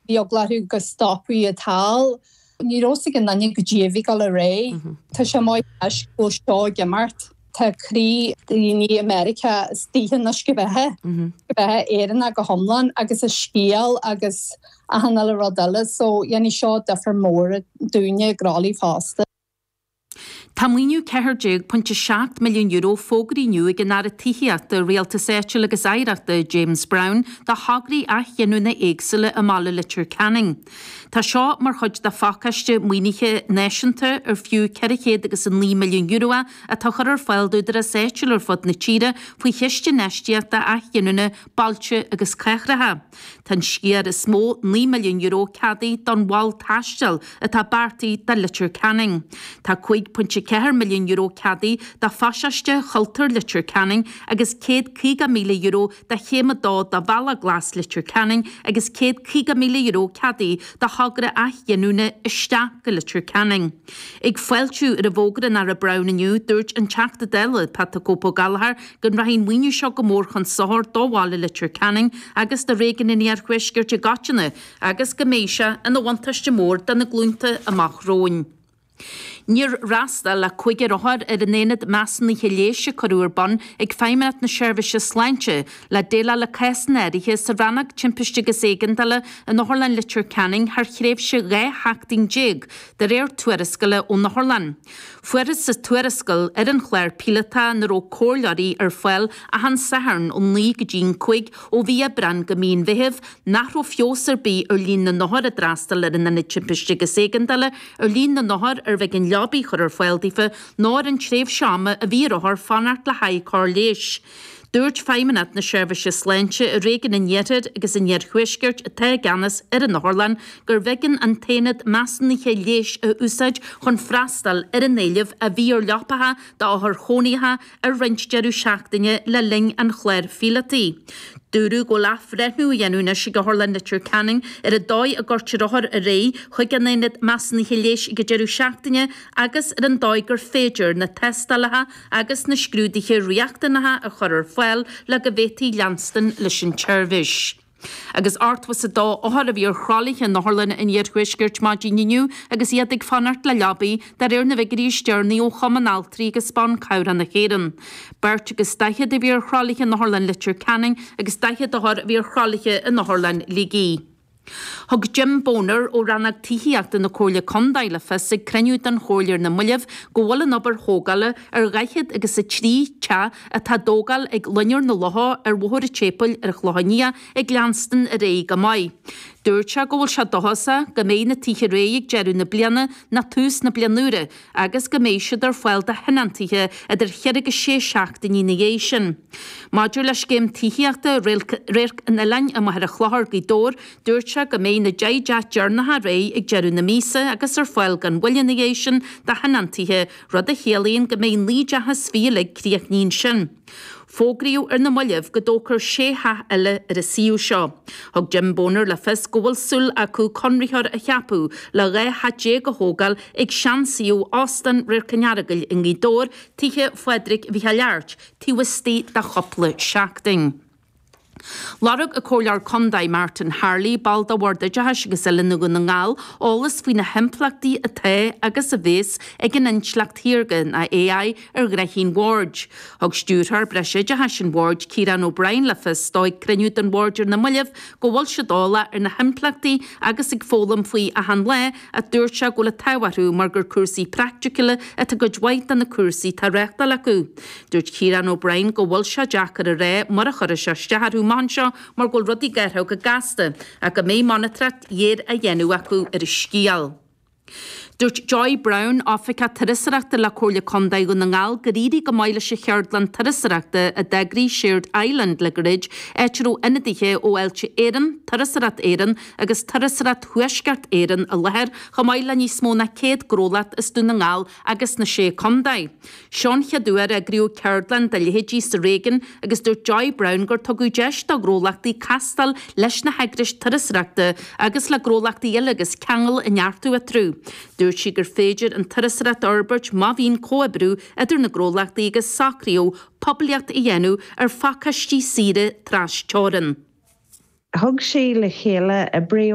Bhí eagla orthu go stopfaí iad thall. Ní raibh a fhios ag aon duine goidé a bhí go le ré. Tá sé maith leis go bhfuil seo ag imeacht. Tá croí daoine i Meiriceá istigh ins na sceimhithe, sceimhithe Éireannaigh go hiomlán, agus a scéal agus achan uile rud eile so dhéanfadh seo difear mór dúinne i gcroí fosta. Tá maoiniú €14.7 milliún fógartha inniu ag an Aire Tithíochta, Rialtais Áitiúil agus Oidhreachta, James Browne, do thograí athghiniúna éagsúla i mBaile Leitir Ceanainn. Tá seo mar chuid de phacáiste maoinithe náisiúnta ar fiú €409 milliún é atá á chur ar fáil d'údaráis áitiúil ar fud na tíre faoi Chiste Infheistíochta Athghiniúna Bailte agus Cathracha. Tá an sciar is mó, €9 milliún, ceadaithe don mhol taistil atá beartaithe do Leitir Ceanainn. Tá €5.4 milliún ceadaithe do Phasáiste Chultúir Leitir Ceanainn agus €150,000 do Chéim 2 de Bhealach Glas Leitir Ceanainn agus €150,000 ceadaithe do thogra athghiniúna 'Isteach go Leitir Ceanainn'. Ag fáiltiú roimh fhógra an Aire Browne inniu, dúirt an Teachta Dála Pat 'The Cope' Ó Gallchóir go rachaidh an maoiniú seo go mór chun sochair do bhaile Leitir Ceanainn agus do réigiún an iarthuaiscirt i gcoitinne agus go mbeidh sé ina bhuntáiste mór do na glúnta amach romhainn. Níor fhreastail ach cúigear othar ar an aonad measúnaithe leighis a cuireadh ar bun ag Feidhmeannacht na Seirbhíse Sláinte le déileáil le cásanna áirithe sa Rannóg Timpiste agus Éigeandála in Otharlann Leitir Ceanainn thar thréimhse 12 sheachtain de réir tuarascála ón Otharlann. Fuarthas sa tuarascáil ar an chlár píolótach ina raibh comhairleoirí ar fáil achan Satharn ó naoi go dtí an cúig, ó mhí Aibreán go mí an Mheithimh, nach raibh feabhas ar bith ar líon na n-othar a d'fhreastail ar an Ionad Timpiste agus Éigeandála, ar líon na n-othar arbh éigean leabaidh a chur ar fáil daofa, ná ar an tréimhse ama a bhí ar othair fanacht le haghaidh cóir leighis. Dúirt Feidhmeannacht na Seirbhíse Sláinte i réigiún an Iarthair agus an Iarthuaiscirt, atá i gceannas ar an otharlann, gurbh éigean an t-aonad measúnaithe leighis a úsáid chun freastal ar an éileamh a bhí ar leapacha d'othair chónaithe ar roinnt deireadh seachtaine le linn an chláir phíolótaigh. Dúradh go bhfuil athbhreithniú á dhéanamh anois ag Otharlann Leitir Ceanainn ar an dóigh a gcuirtear othair ar aghaidh chuig an aonad measúnaithe leighis ag an deireadh seachtaine agus ar an dóigh gur féidir na tástálacha agus na scrúduithe riachtanacha a chur ar fáil le go bhféadfaí leanstan leis an tseirbhís. Agus 82 othar a bhí ar thralaithe in Otharlanna an Iarthuaiscirt maidin inniu agus iad ag fanacht le leabaidh, de réir na bhfiguirí is deireanaí ó Chumann Altraí agus Ban Cabhrach na hÉireann. Beirt agus daichead a bhí ar thralaithe in Otharlann Leitir Ceanainn agus 40 othar a bhí ar thralaithe in Otharlann Shligigh. Thug Jim Boner ó Rannóg Tithíochta na Comhairle Contae le fios ag cruinniú den Chomhairle ar na moillibh go bhfuil an obair thógála ar dhaichead agus a trí teach atá á dtógáil ag Loinnir na Locha ar Bhóthar an tSéipéil ar an Chlochán Liath ag leanstan ar aghaidh go maith. Dúirt sé go bhfuil sé dóchasach go mbeidh na tithe réidh ag deireadh na bliana nó tús na bliana úire agus go mbeidh siad ar fáil do thionóntaithe idir cheithre agus sé seachtainí ina dhiaidh sin. Maidir le scéim tithíochta Radharc an Oileáin i Machaire Chlochair, Gaoth Dobhair, dúirt sé go mbeidh na deich dteach deireanacha réidh ag deireadh na míosa agus ar fáil gan mhoill ina dhiaidh sin do thionóntaithe, rud a chiallaíonn go mbeidh naoi dteach is fiche uilig críochnaithe ansin. Fógraíodh ar na moillibh go dtógfar sé theach eile ar an suíomh seo. Thug Jim Boner le fios go bhfuil súil acu conraitheoir a cheapadh le 12 theach a thógáil ag seansuíomh Óstán Radharc an Earagail i nGaoth Dobhair, Tithe Phádraig Mhicheáil Airt, taobh istigh de chúpla seachtain. Lorg an comhairleoir contae, Martin Harley, ball de Bhord Oideachais agus Oiliúna Dhún na nGall, eolas faoi na himpleachtaí atá agus a bheas ag an intleacht shaorga, nó AI, ar ghraithí an Bhoird. Thug Stiúrthóir Breisoideachais an Bhoird, Ciarán O'Brien, le fios dó ag cruinniú den Bhord ar na moillibh go bhfuil siad eolach ar na himpleachtaí agus ag foghlaim faoi achan lá, ach dúirt sé go bhfuil an t-ádh orthu mar gur cúrsaí praiticiúla atá i gcuid mhaith de na cúrsaí atá á reáchtáil acu. Dúirt Ciarán O'Brien go bhfuil sé deacair a rá mar a chuirfeas sé isteach orthu amach anseo mar go bhfuil rudaí ag athrú go gasta ach go mbeidh monatóireacht ghéar á dhéanamh acu ar an scéal. Dúirt Joy Browne, Oifigeach Turasóireachta le Comhairle Contae Dhún na nGall gur éirigh go maith leis an cheardlann turasóireachta a d'eagraigh Shared Island le gairid, áit a raibh ionadaithe ó Fháilte Éireann, Turasóireacht Éireann, agus Turasóireacht Thuaisceart Éireann i láthair, chomh maith le níos mó ná 100 gnólacht as Dún na nGall agus na Sé Contae. Seo an chéad uair a eagraíodh ceardlann dá leithéidí sa réigiún agus dúirt Joy Browne gur tugadh deis do ghnólachtaí castáil leis na heagrais turasóireachta agus le gnólachtaí eile agus ceangail a neartú eatarthu. Dúirt sí gur féidir an turasóireacht a fhorbairt má bhíonn comhoibriú idir na gnólachtaí agus socraíodh poiblíocht a dhéanamh ar phacáistí saoire trasteorann. Thug sí le chéile oibreoirí.